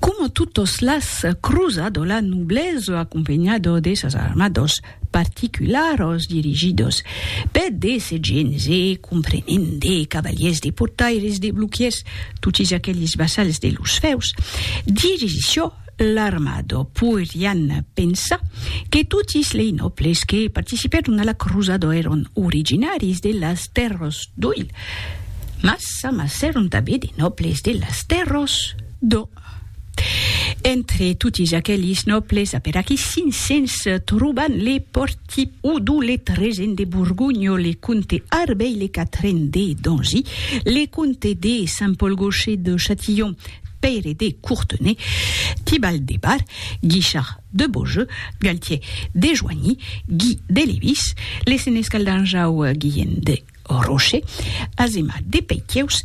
Como totos las cruzado la nublezo acompenhado de sas armados particularos dirigidos pe de segenes e comprenent de cavaliers de portaires de bloquiers totis aqueles vassals de los feus dirigició l'armado poirián pensar que totis lei nobles que participèron a la cruzado èron originaris de las terros d'oil Mas s'amassèron tanben de nòbles de las tèrras. Do. Entre totis aquelis nòbles a per aquí 500 troban le pòrti Oudou, le tresen de Borgonha, le comte Arbey, le quatren de Dangy, le comte de Saint-Paul-Gaucher de Châtillon, Pèire de Courtenay, Tibal de Bar, Guichard de Beaujeu, Galtier de Joigny, Guy de Lévis, le senescal d'Anjau Guillen de Au Rocher, asemat de Peitieus,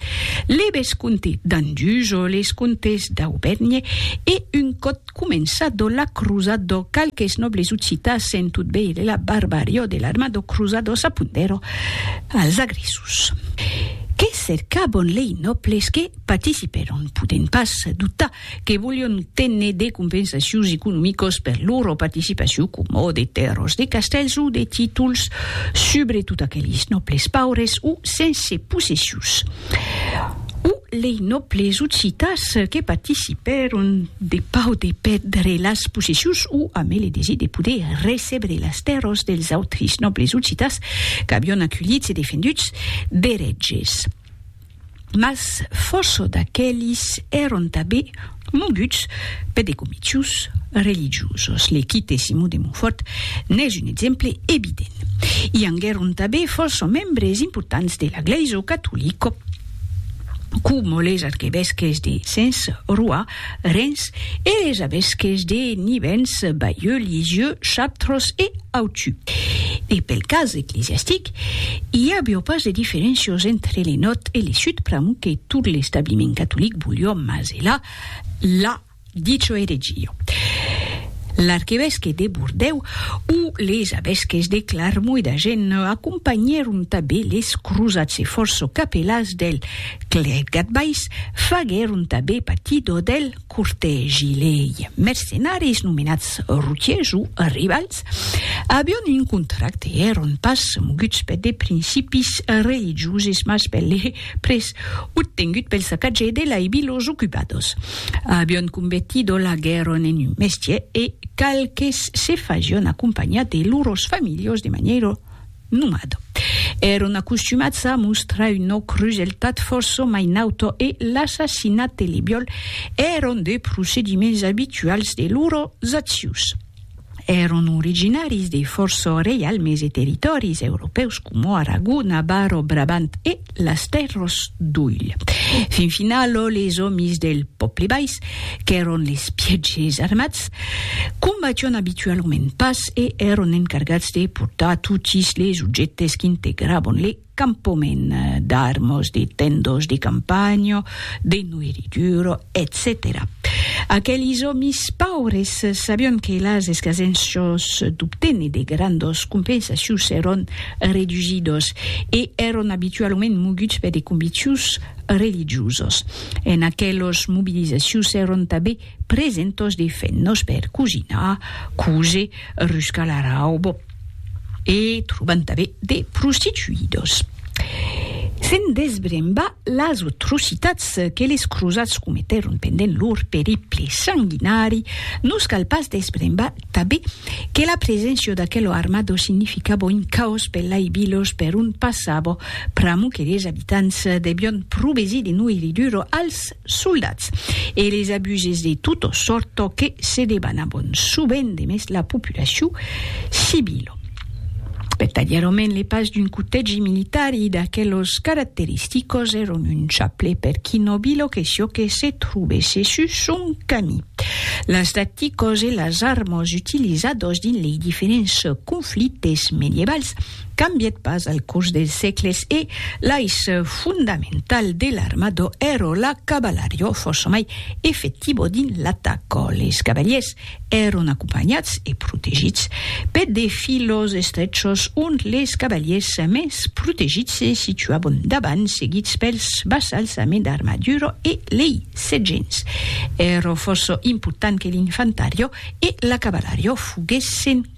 le vescomte d'Andujo, les comtes d'Aubèrnhe e, un còp començado la crusado, qualques nòbles occitans sent tot veir de la barbarior de l'armado crusado s'apondèron als agressos. Que cercabon lei nòbles que participèron? Podèm pas doutar que volion téner de compensacions economicos per lor participacion coma de tèrras, de castèls o de títols, subretot aqueles nòbles paures o sense possessions, o lei nòbles occitans que participèron de pau de pèrdre las possessions o amé le desir de poder recebre las tèrras dels autris nòbles occitans qu'avion aculhits e defenduts d'eretges. mas fòrça d'aquelis èron tanben moguts per de comitius religiosos. Le quite de Simon de Montfòrt n'es un exemple evident. I anguèron tanben fòrça membres importants de la Glèisa catolica, coma los arquevesques de Sens, Roy, Rens e es avesques de Nivens, Bayeux, Lisieux, Chaptros e Authieu. E pel cas eclesiastic, i avió pas de diferéncios entre le nòrd e le sud pr'amor que tot l'establiment catolic volió maselar la dicho eregia. L'arquevesque de Bordèu o les avesques de Clarmont e d'Agen acompanhèron tanben les crosats e fòrça capelans del Clèc Gadbais faguèron tabé patidor del cortègi lei mercenaris nomenats routiers o rivals avion un contracte èron pas moguts per de principis religioses mas per le prés obtengut pel sacatge de lei vilos ocupados avion convertidor la guèron en un mestier e qualques se fasión acompanhar de loros familhos de manièra nomad. Èron acostumats a mostrar un òc roselhat fòrça mai nauta e l'assassinat e le viòl èron de procediments abituals de lors accions. Èron originaris de fòrça reialmes e territòris europèus coma Aragona, Bar o Brabant e, las tèrras d'Oilh. Fin finalo les òmis del pòble bais, qu'èron les pièges armats, combation abitualament pas e èron encargats de portar totis les ojèctes qu'integravan le campament, d'armos, de tendòs de campanha, de noiri duro, etcetèra Aquelis òmis paures sabion que las escasenços d'obténer de grandos compensacions èron redusidos e èron abitualament moguts per de conviccions religiosos. En aquelos mobilizacions èron tabé Presentos de fennos per cosinar, cose, ruscar la raubo. E troban tanben de prostituidos. Se'n desbremba las atrocitats que les crosats cometèron pendent lor periple sanguinari, nos cal pas desbrembar tanben que la preséncia d'aquelo armado significabo un caos per lai vilos per ont passabo, pr'amo que les abitants debion provesir de noirriduro als soldats e les abuses de tota sòrt çò que se debanavan sovent de mes la populacion civila vertadièrament le pas d'un cotegi militari d'aquelos caracteristicos èron un chaple per qui nobilo que sió que se trobèsse sus son cami las tacticos e las armas utilizados dins lei diferents conflictes medievals cambièt pas al cors dels sègles e l'aiç fondamental de l'armado èro la cavalariò fòrça mai efectivo dins l'ataco. Les cavaliers èron acompanhats e protegits per de filos estrechos ont les cavaliers mens protegits se situavan davant seguits pels vassals amé d'armadura e lei sergents. Èro fòrça important que l'infantariò e la cavalariò foguèssen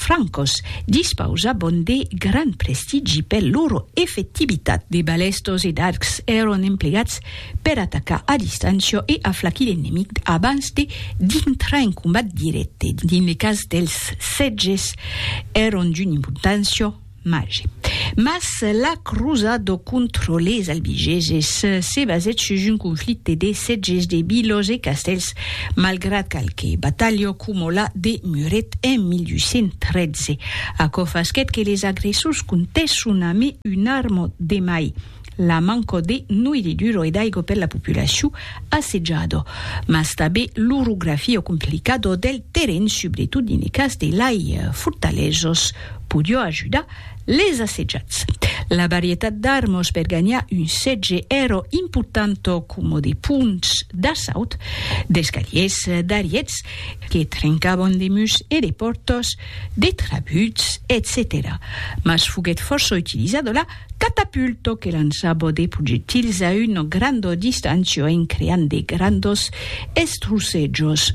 francos, dispausabon de gran prestigi per lor efectivitat. De balèstos e d'arcs èron emplegats per atacar a distància e aflacir l'enemic abans de dintrar en combat dirècte. Dins le cas dels sètges èron d'una importància Mage. Mas la crosa do contro les Albigeses se basèt sus un conflicte de setges de vilos e castèls, malgrat qualque batalha coma la de Muret en 1813. Aquò fasquèt que les agressors comptèsson amé un arma de mai. La manca de noirriduro e d'aigo per la populacion assejada, mas tabé l'orografia complicada del terren subretot dins le cas de lai fortalesas podió ajudar les assejats. La varietat d'armas per ganhar un setge èra importanta coma de ponts d'assaut, d'escaliers, d'ariets que trencavan de murs e de pòrtas, de trabuts, etcetèra. Mas foguèt fòrça utilizada la. Catapulto que lançabo de projectils a una granda distancia en creant de grandos estrusejos.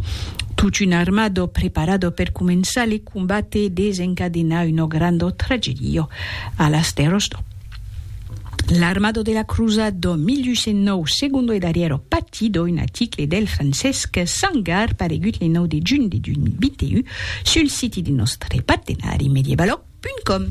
Tot un armado preparado per començar le combat e desencadenar una granda tragedia a las tèrras d'Or. L'armado de la Crusat de 1809, segundo e darrièro pati d'un article del Francesc Sangar paregut le 9 de junh de 2021 sul siti de nòstre partenari Medievaloc.com.